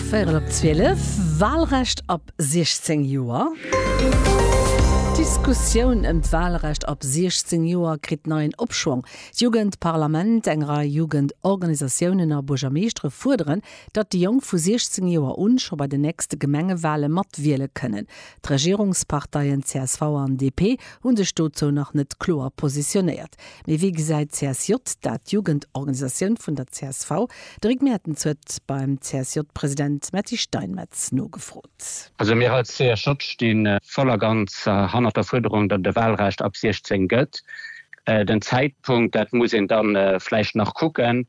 Véierel op 12, Walrecht ab 16 Joer. D'Diskussioun ëm d'Walrecht ab 16 Joer kritt neien Opschwong. D'Jugendparlament, eng Rei Jugendorganisatiounen a Buergermeeschtere fuerderen, datt déi Jonk vu 16 Joer un scho bei den nächste Gemengewale mat wiele kënnen. D'Regierungsparteien csv an DP hu sech dozou nach net kloer positionéiert. Mee wéi gesäit csj dat? D'Jugendorganisatioun vun der csv, de Rick Mertens, huet beim CSJ-President Matti Steinmetz nogefrot. Also mir als csj sti voll a ganz hannert der Fuerderung, datt et e Wahlrecht ab 16 gëtt. Den Zäitpunkt, dat muss een da vläicht nach kucken.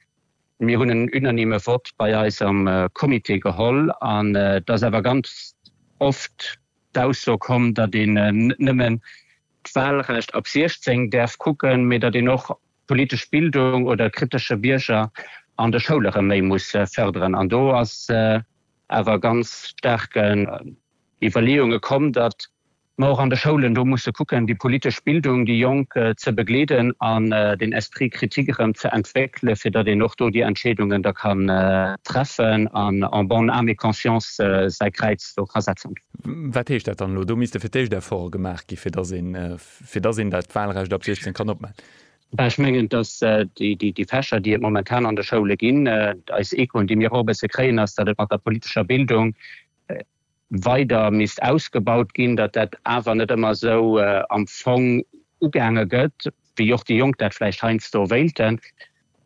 Mir hunn en unanime Vott bei eis am Comité geholl an et ass awer ganz oft d'Ausso komm, datt een nëmmen d'Wahlrecht ab 16 däerf kucken, mee datt een och d'politesch Bildung oder kritesche Bierger an de Schoule rëm méi muss fërderen. An do ass awer ganz staark Iwwerleeunge komm, datt mer och an de Schoulen do musse kucken, déi politesch Bildung, déi Jonk ze begleeden an den Esprit critique erëm ze entwéckele fir datt een och do déi Entscheedungen da kann treffen an en bonne âme et conscience säi Kräiz do ka setzen. Wat heescht dat dann elo? Do misste fir d'éischt Efforte gemaach gi fir datt een fir datt een dat Wahlrecht ab 16 kann opmaachen. Ech mengen, datt déi déi Fächer, déi et momentan an de Schoule ginn, eis Echoen, déi mir och e bësse kréien, ass, datt et mat der politescher Bildung weider misst ausgebaut ginn, datt dat awer net ëmmer esou am Fong ugaange gëtt, wéi och déi Jonk dat vläicht heiansdo wéilten.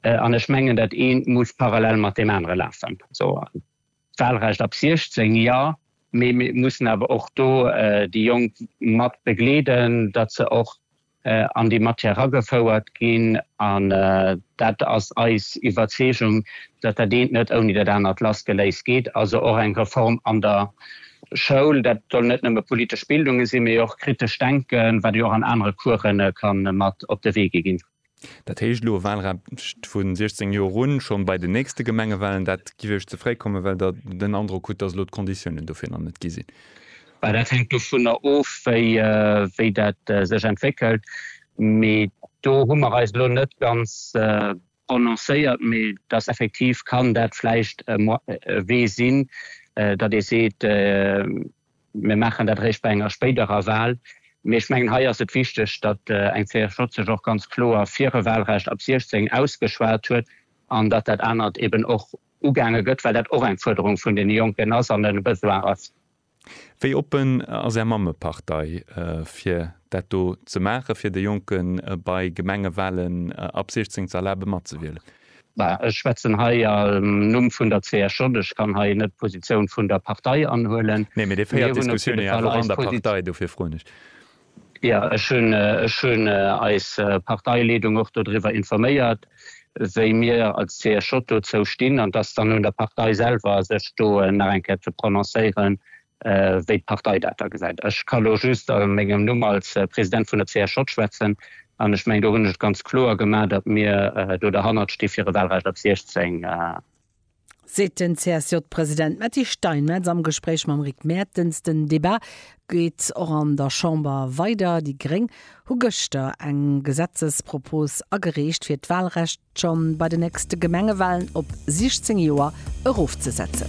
An ech mengen, dat eent muss parallel mat deem anere lafen. D'Wahlrecht ab 16 jo, mee mir mussen awer och do déi Jonk mat begleeden, datt se och an déi Matière eragefouert ginn. An dat ass eis Iwwerzeegung, datt dat eent net ouni dat anert lassgeléist geet. Also och eng Reform an der Schoul. Dat soll net nëmme politesch Bildunge sinn, mee och kritescht Denken, wat jo och an anere Coursen ka mat op de Wee gi ginn. Dat heescht elo e Wahlrecht vu 16 Joer un, schonn bei den nächste Gemengewahlen. Dat géif Iech ze fréi kommen, well Der den Androck hutt, datt elo d'Konditiounen dofir nach net gi sinn? Dat hänkt dovunner of, wéi dat sech entwéckelt. Mee do hu mer eis elo net ganz prononcéiert. Mee et ass effektiv, kann dat vläicht e Wee sinn, datt ee seet, Mir maachen dat eréischt bei enger spéiderer Wal. Mee ech mengen, hei ass et wichteg, datt eng CSJ sech och ganz kloer fir e Walrecht ab 16 ausgeschwat huet an datt dat anert eben och ugaange gëtt, well dat och eng Fuerderung vun deene Jonken ass an e Besoin ass. Wéi oppen ass Är Mammepartei, fir dat do ze maachen, fir de Jonke bei Gemengewalen ab 16 ze erlabe matzewielen? Ech schwätzen hei am Numm vun der CSJ. Ech kann hei net d'Positioun vun der Partei anhuelen. Nee, mee Dir féiert d'Diskussioun jo awer och an der Partei, dofir froen ech. Jo, ech hunn eis Parteileedung och dodriwwer informéiert, wéi mir als CSJ dozou stinn. An et ass dann un der Partei selwer, sech do nach eng Kéier ze prononcéieren, wéi d'Partei dat da gesäit. Ech ka elo just a mengem Numm als President vun der CSJ schwätzen an ech mengen, do hunn ech et ganz kloer gemaach, datt mir do derhannert sti fir e Wahlrecht ab 16. Seet den CSJ-President Matti Steinmetz am Gespréich mam Rick Mertens. Den Debat geet och an der Chamber weider. Déi Gréng hu gëschter eng Gesetzespropos agereecht, fir d'Wahlrecht scho bei den nächste Gemengewahlen op 16 Joer erofzesetzen.